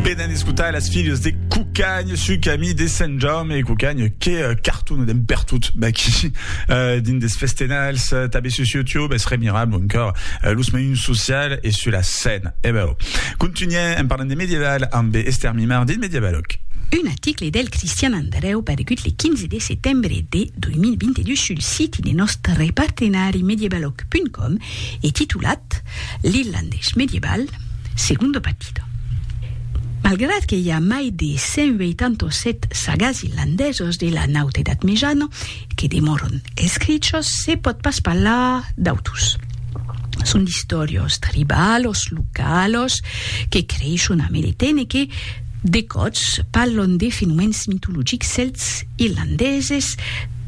Venen escotar las filhas de Cucagn su camí de Sant Jaume e Cucagn que eh, cartona d'en pertot d'aquí eh, dins des festenals, eh, tabé sus YouTube, es remirable encòr eh, los meiuns social e su la scène. E bèu, contunhèm en parlant de medieval ambe Esther Mimard dins Medievaloc. Un article del Cristian Andreu paregut le 15 de setembre de 2022 sul siti de nòstre partenari medievaloc.com e titulat L'Irlandés medieval, segundo pati. Antàrtica. Malgrat que i a mai de 187 sagas irlandesos de la Naut Edat Mejana que demòron escrichos, se pòt pas parlar d'autus. Son d'istòrios tribalos, localos, que creishon a Meretene e que, de còps, parlon de fenomèns mitologics celts irlandeses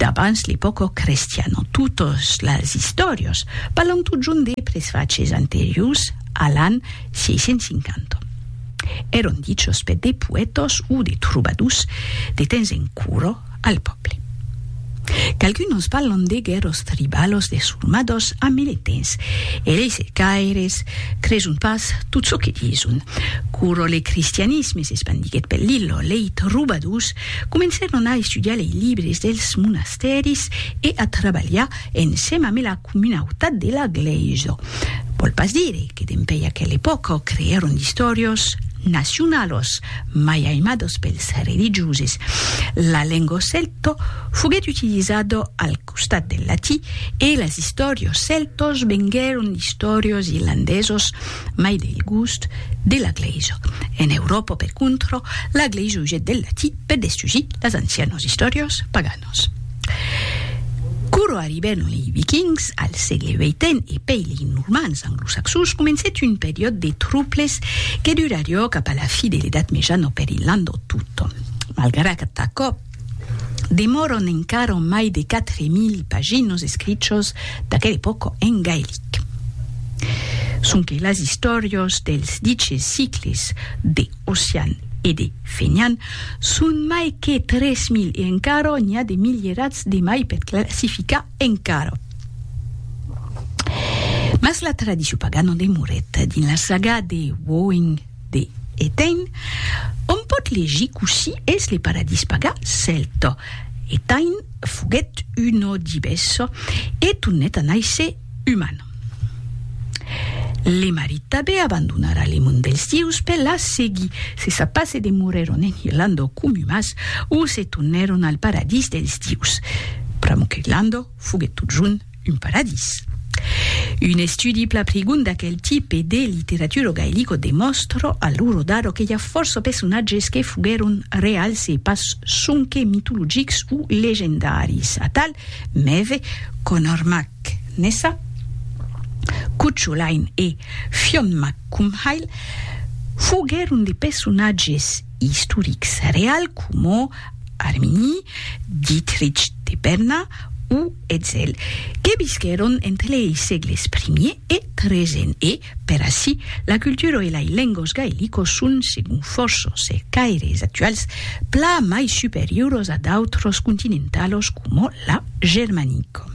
d'abans l'epòca crestiana. Totas las istòrios parlon totjorn de presvaches anteriors a l'an 1650. Èron dichos per de poètos o de trobadors de temps en curo al pòble. Qu'algunos parlon de guèrros tribalos de sormadors a meletens, e lei cercaires creson pas tot çò que dison. Curo le cristianisme s'espandiguèt per l'illo, lei trobadors comencèron a estudiar lei libres dels monastèris e a trabalhar ensèm amé la. comunautat de la glèisa. Vòl pas dire que dempèi aquela epòca creèron d'istòrios nacionalos mai aimados pels religioses. La lenga celta foguèt utilizada al costat del latí e las istòrios celtas venguèron d'istòrios irlandesos mai del gust de la glèisa. En Euròpa, per contra, la glèisa usèt del latí per destusir las ancianas istòrias paganas. Nossos. Quoro arribèron lei Vikings al sègle vii e pei lei Normands anglosaxons, comencèt un periòd de trouples que durarió cap a la fi de l'Edat Mejana per Irlanda o totun. Malgrat aquò, demòron encara mai de 4.000 paginos escrichos d'aquela epòca en gaelic. Sonque las istòrios dels diches sicles de. Ossian e de Fenian son mai que 3.000 e encara n'i a de milierats de mai per classificar encara. Mas la tradicion pagana demorèt dins la saga de Woing de Etain, ont pòt legir cossí es le paradís paga cèlta. Etain foguèt un òdibesso e tornèt a nàisser uman. Le marit tabé abandonara le mond dels dieus per la seguir se sa pas se demorèron en Irlanda o Comumas o se tornèron al paradís dels dieus. Pr'amor qu'Irlanda foguèt totjorn un paradís. Un estudi pla prigond d'aquel tipe de literatura gaelica demòstra a l'ora d'ara que i a fòrça personatges que foguèron reals e pas sonque mitologics o legendaris. Atal, Mève, Conor Mac Nessa, Cucho Lain e Fionn Mac Cumhaill foguèron de personatges istorics real coma Armini, Dietrich de Berna o Etzel, que visquèron entre lei sègles primier e tresen e, Per ací, la cultura e lai lengos gaelicos son, segon fòrça cercaires actuals, pla mai superioros a d'autres continentalos coma la germanico.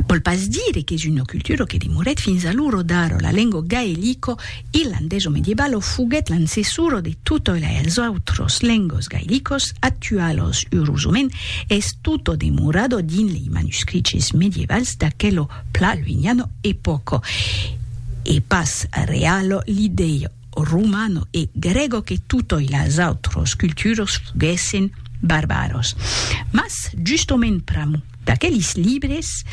Vòl pas dire qu'es una cultura que demorèt fins a l'oro d'aro, la lengo gaelico, irlandés o medievalo, foguèt l'ancessora de totoi lais autres lengos gaelicos actualos, eurosament, es totò demorado dins lei manuscriches medievals d'aquelo Pla luignano e poco e pas realo l'idèia romano e grego que totoi las autros culturos foguèssen barbaros. Mas justament pr'amor d'aquelis libres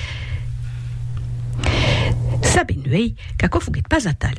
sabem uèi qu'aquò foguèt pas atal.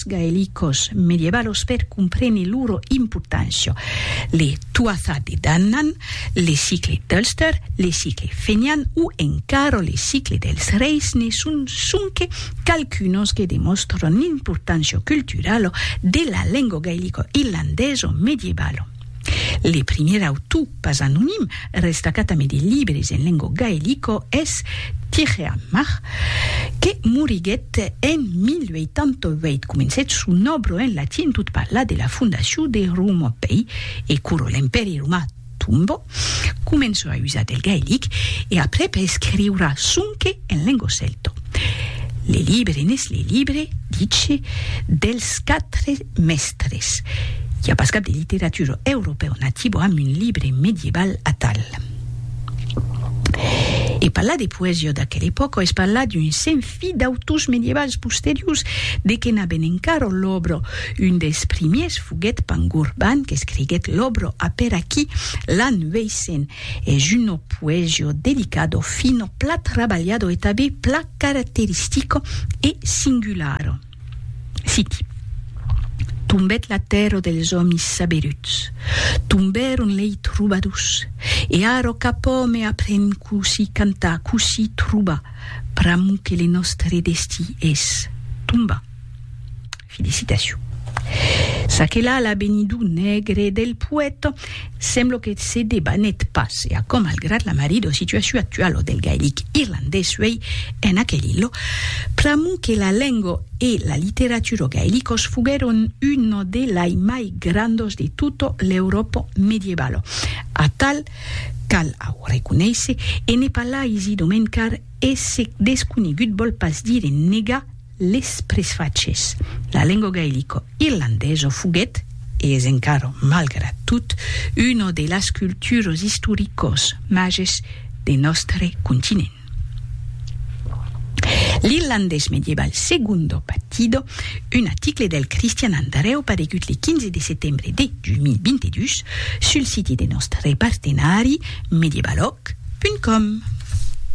texts gaelicos medievalos per comprene loro importància, le Tuatha Dé Danann, le cicle d'Ulster, le cicle fenian o encara le cicle dels reis ne son sonque qualqu'unos que demòstran l'importància culturala de la lenga gaelico-irlandesa medievalo. Le primièr autor pas anonim restacat amé de libres en lengo gaelico es Tirheammar, que moriguèt en 1088. Comencèt son òbro en latin tot parlar de la fondacion de Romopei e curo l'Empèri Romà tombò, començò a usar del gaelic e aprèp a escriurar sonque en lengo celto. Le libre n'es le libre, dice, dels quatre Mèstres. I a pas cap de literatura europèu nativa amb un libre medieval atal. E parlar de poesia d'aquela epòca es parlar d'un senfi d'autors medievals posteriors, de que n'aben encara l'òbra. Un dels primièrs foguèt Pangorban, qu'escriguèt l'òbra a per aquí, l'an 800. Es una poesia delicada, fina, pla trabalhada e tanben pla caracteristica e singulara. Siti. Tombèt la tèrra dels òmis saberuts. Tombèron lei trobadors. E ara cap òme aprèn cossí cantar, cossí trobar, pr'amor que le nòstre destí es tombar. Felicitacion. Ça que la la benidor nègre del poèta Semblo que se debanèt pas e aquò malgrat la marida situacion actuala del gaelic irlandés uèi en aquel ilha. Pr'amor que la lenga e la literatura gaelicas foguèron una de lai mai grandas de tota l'Euròpa medievala. Atal, cal au reconéisser, e ne pas lai si domencar e se desconegut vòl pas dire negar, Les presfachés. La lengo gaelico irlandeso foguèt, e es encara malgrat tot, una de las culturos istoricos mages de nòstre continent. L'irlandés medieval Segundo Batido, un aticle del Cristian Andrèu paregut le 15 de setembre de 2022 sul siti de nòstre partenari Medievalog, Tic. Punt com.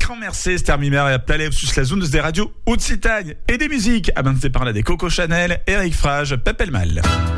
Quand Mercés Termimer e Aptalèu sus las ondas de Radio Occitània. E de musica, abans de parlar de Coco Chanel, Eric Frage, Pèp el Mal.